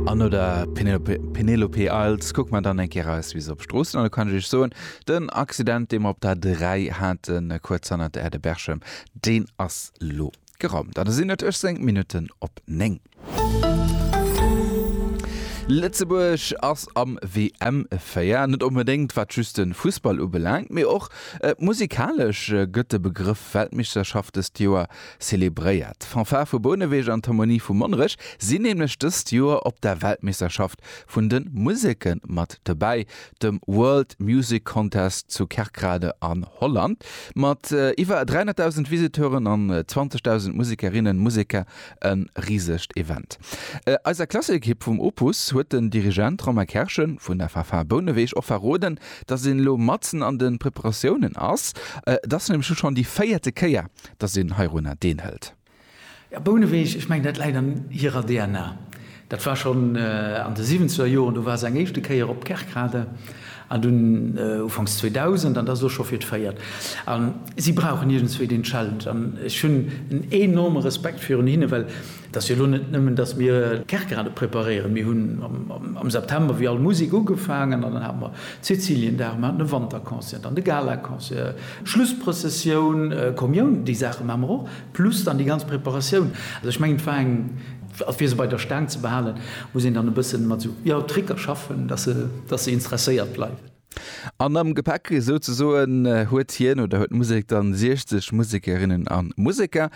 An no der Penelope, Penelope Isles kuck man dann eng Kéier eis Wiss op Stroossen an da kann ech iech soen, den Accident, dee mer op der 3 haten, kuerz hannert der Aire de Berchem, deen ass lo geraumt. An da sinn et ech seng Minutten op 9. Lëtzebuerg ass am WM-Feier, net onbedéngt wat just de Fussball ubelaangt, mee och musikalesch gëtt de Begrëff Weltmeeschterschaft dëst Joer Zelebréiert. D'Fanfare vu Bouneweg an d'Harmonie vu Monnerech sinn nämlech dëst Joer op der Weltmeeschterschaft vun de Museke mat dobäi, dem World Music Contest zu Kerkrade an Holland. Mat iwwer 300.000 Visiteuren an 20.000 Musekerinnen, Museker e risegt Event. Eiser Klasseekipp vum Opus huet den Dirigent Romain Kerschen vun der Fanfare Bouneweg och verroden, dass een elo matzen an de Preparatiounen ass. Et ass nämlech elo schonn déi véierte Kéier, dass een heirunner deenhëlt. Ja, Bouneweg, ech mengen, dat läit an hirer DNA. Dat war schonn an de siwwenzeger Joren, do war se eng éischte Kéier op Kerkrade, an dunn ufanks 2000, an dat ass och scho fir d'véiert. A si brauchen iergendzwou deen Challenge, an ech hunn en enorme Respekt virun hinne, well Et ass jo elo net nëmmen, datt mir d'Kerkerade preparéieren. Mir hunn am September wéi all Musek ugefaangen an dann hate mer Cäciliendag, mer haten e Wanterconcert, dann de Galaconcert, Schlussprëssessioun, Kommioun, déi Saache maache mer och, plus dann déi ganz Preparatioun. Also ech mengen, et war eng, a fir se bei der Staang ze behalen, muss een dann e bësse mat esou, jo, Tricker schaffen, datt se interesséiert bleiwen. An am Gepäck souzesoen huet hien oder huet d'Musek dann 60 Musekerinnen an Museker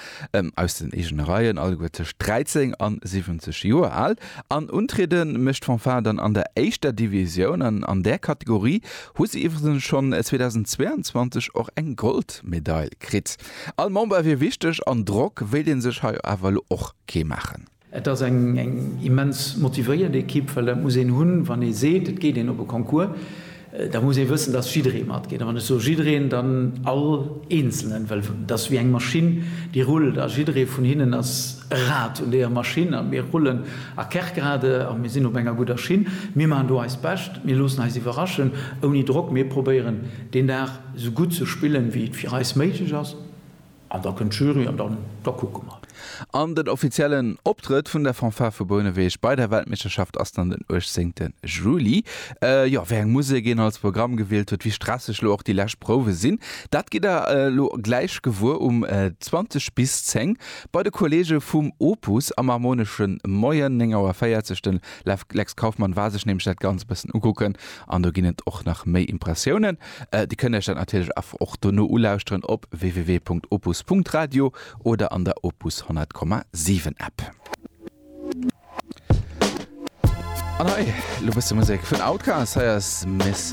aus den eegene Reien, alleguer tëscht 13 an 70 Joer al. An untriede mécht d'Fanfare dann an der éischter Divisioun. An an där Kategorie hu se iwwregens schonn 2022 och eng Goldmedail kritt. All Member wier wichteg an Drock wéilt ee sech hei awer elo och kee maachen. Et ass eng immens motivéiert Ekipp, well dat muss een hunn, wann ee seet, et geet een op e Concours, da muss ee wëssen, datt jidderee matgeet. A wann ech soe jiddereen, dann all Eenzelnen, well et ass wéi eng Maschinn, déi rullt a jidderee vun hinnen ass e Rad un deeër Maschinn a mir rullen a Kerkrade a mir sinn op enger gudder Schinn. Mir maachen do eist Bescht, mir loossen eis iwwerraschen, ouni Drock. Mir probéieren deen Dag esou gutt ze spillen, wéi et fir eis méiglech ass. An da kënnt d'Jury an dann, da kucke mer. An den offiziellen Optrëtt vun der Fanfare vu Bouneweg bei der Weltmeeschterschaft ass dann den 18 Juli. Jo, wéi eng Musek een als Programm gewielt huet, wéi stresseg elo och déi lescht Prouwe sinn, dat gitt der elo gläich gewuer um 20 bis 10 bei de Kolleege vum Opus am Harmoneschen. Moien 9 Auer 40, de Lex Kauffmann war sech nämlech dat Ganzt e bëssen ukucken an do ginn et och nach méi Impressiounen. Dir kënnt Iech dat natierlech awer och dono ulauschteren op www.opus.radio oder an der Opus 100,7 App. An hei elo bësse Musek vun Outkast. Hei ass Miss.